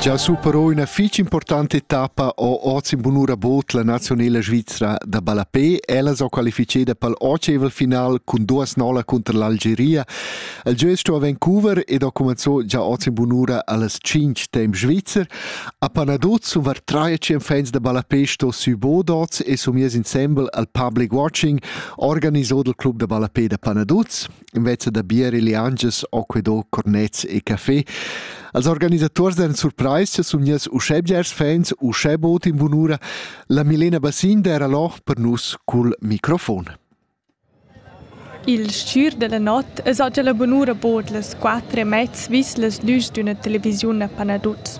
Già su però üna fich importanta etappa ho oz in bunura bod la nazionela svizra da ballapè. Ella s'ho qualificeda pel oceval final cun duas nola cunter l'Algeria. El gio es sto a Vancouver ed ho cumanzò già oz in bunura allas 5 temp svizzer. A Panaduz sun var trae cem fans da ballapè sto sü bod oz e sun mies insembel al public watching organisò dal club da ballapè da Panaduz. invece da bier e liangias o que do cornets e café. Als organisators den surprais sun nies uschè bgers fans, uschè bot in bunura, la Milena Bassin d'era lo per nus cul microfon. Il schür della not es oggi la bunura bod las quattro e mezz vis las lüs d'üna televisiun a Panaduz.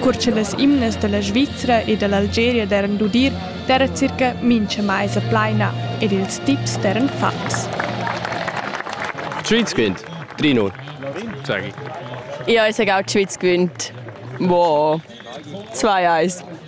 Cur che las imnas da la Svizra e da l'Algeria daran d'udir, d'era circa mincha maisa plaina ed ils tips daran fatgs. Tschütsquint, Trinur. Ich esse gau Tschütsquint. Wow. Zwei Eis.